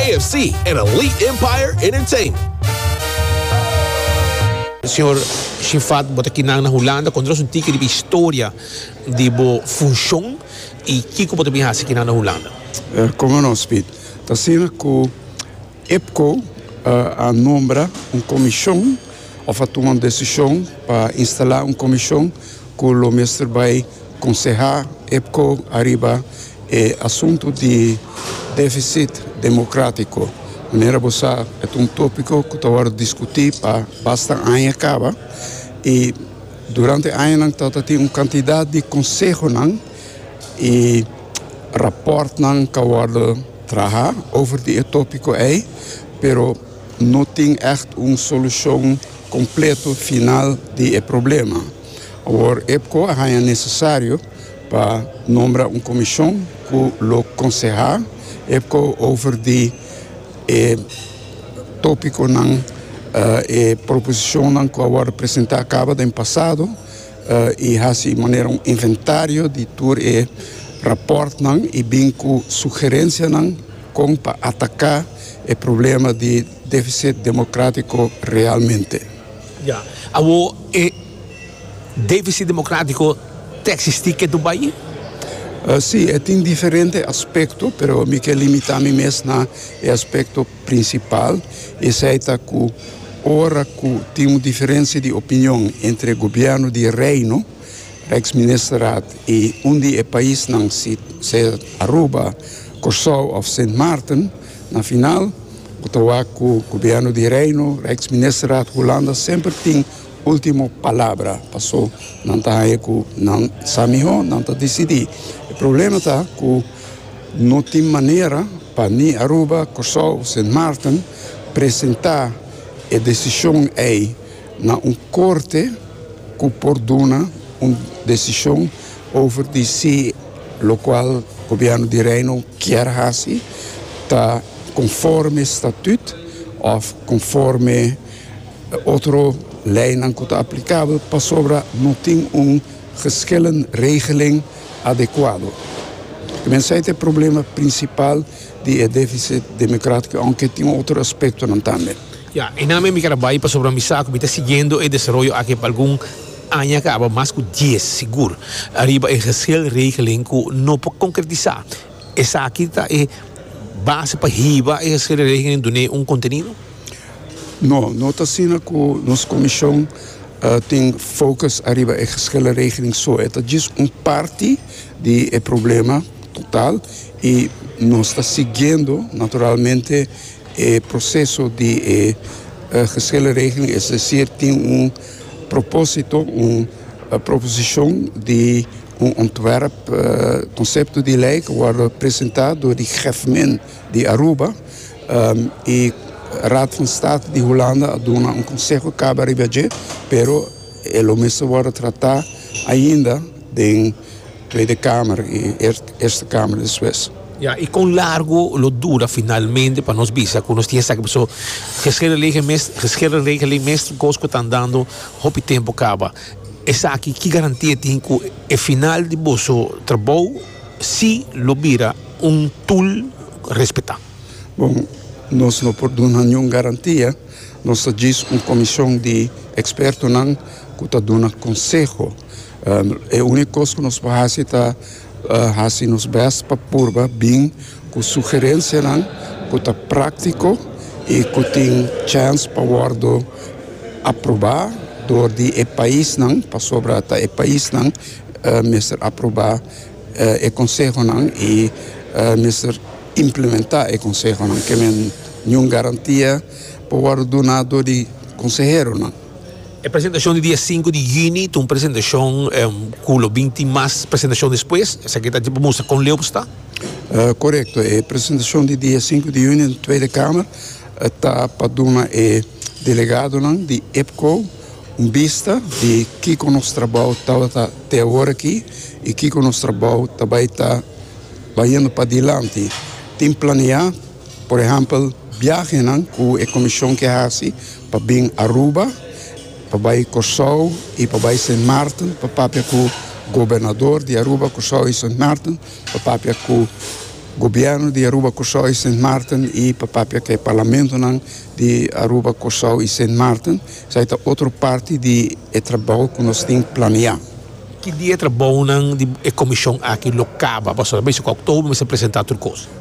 AFC en Elite Empire Entertainment. Señor Shiffat, bo ta kinan na Hulanda. Konta nos un tiki riba e historia di bo funshon i kiko bo ta bin hasi kinan na Hulanda? Como no, Speed. Ta asina ku IPCO a nombra un komishon, òf a tuma un desishon pa instalá un komishon ku lo mester bai. Konsehá epco ariba e asuntu di defisit demokratiko. Manera bo sa, e ta un topiko ku ta wòrdu diskutí pa basta aña kaba i durante añanan ta ta tin un kantidat di konsehonan i rapòrtnan ka wòrdu trahá over di e topiko ei, pero no tin ègt un solushon kompleto final di e problema. Awor EPCO a haña nesesario pa nombra un komishon ku lo konsehá EPCO over di e tópikonan, e proposishonnan ku a wòrdu presentá kaba den pasado i hasi manera un inventario di tur e rapòrtnan i bin ku sugerensianan kon pa ataká e problema di Deficit democratico realmente. Ya. Awor e deficit democratico ta existi ke tur bai? Si, e tin diferente aspecto, pero mi ke limita mi mes na e aspecto principal, esei ta cu ora cu tin un diferencia di opinion entre gobierno di Reino, Rijksministerraad, y un di e paisnan, si sea Aruba, Corsou of Sint Maarten, Na final, bo ta wak ku Gobièrnu di Reino, Rijksministerraad, Hulanda semper tin último palabra. Pasó nan ta haña ku nan sa mihó, nan ta disidí. E problema ta ku no tin manera pa ni Aruba, Kòrsou, Sint Maarten presentá e desishon ei. na un korte ku por duna un desishon over di si lokual Gobièrnu di Reino kier hasi ta konforme statüt òf konforme otro leinan ku ta aplikabel pasobra no tin un geschillen regeling adekuado. Mensei ta e problema prinsipal di e defisit demokratiko, ounke tin otro aspektonan tambe. Ya, e nan mi keda bai pasobra mi sa ku mi ta siguiendo e desaroyo aki pa algun aña kaba, mas ku dies sigur, ariba e geselregeling ku no por konkretisá. Esaki ta e base pa hiba e geselregeling dun'é un kontenido? No, no ta asina ku nos komishon tin fokus ariba e geselregeling so. E ta djis un parti di e problema total i nos ta siguiendo naturalmente. E proseso di e geshele regeling, es desir tin un propósito, un proposishon di un ontwerp, konsepto di lei ku wòrdu presentá dor di Gèfmin di Aruba i Raad van State di Hulanda a duna un konseho kaba riba dje, pero e lo mester wòrdu tratá ainda den. Tweede Kamer i Eerste Kamer despues. Ya, i kon largo lo dura finalmente pa nos bisa ku nos tin esaki paso geschiedenlege mes geschiedenregeling mes tin kos ku ta andando hopi tempu kaba. Esaki ki garantia tin ku e final di boso trabou si lo bira un tul respetá? Bon, nos no por duna niun garantia. Nos ta djis un komishon di ekspertonan ku ta duna konseho. E único cos cu nos por haci ta haci nos best pa purba bin cu sugerencianan cu ta practico y cu tin chance pa wordo aproba door di e paisnan, pasobra ta e paisnan mester aproba e consehonan y mester implementa e consehonan. Ke men niun garantia por wordo duna door di conseheronan. E presentashon di dia sinku di yüni ta un presentashon ku lo bin tin mas presentashon despues. Esaki ta pa mustra kon leu bo sta. Korekto, e presentashon di dia sinku di yüni den Tweede Kamer ta pa duna e delegadonan di EPCO un bista di kiko nos trabou tabata te awor aki i kiko nos trabou ta bai ta bayendo padilanti. Tin planeá Por ehèmpel, biahenan ku e komishon ke hasi pa bin Aruba, pa bai Kòrsou i pa bai Sint Maarten pa papia ku gobernador di Aruba, Kòrsou i Sint Maarten, pa papia ku gobièrnu di Aruba, Kòrsou i Sint Maarten i pa papia ku e parlamentonan di Aruba, Kòrsou i Sint Maarten. Esei ta otro parti di e trabou ku nos tin planeá. Ki dia e trabounan di e komishon aki lo kaba? Pasobra mester ku Oktobro mester presentá tur kos.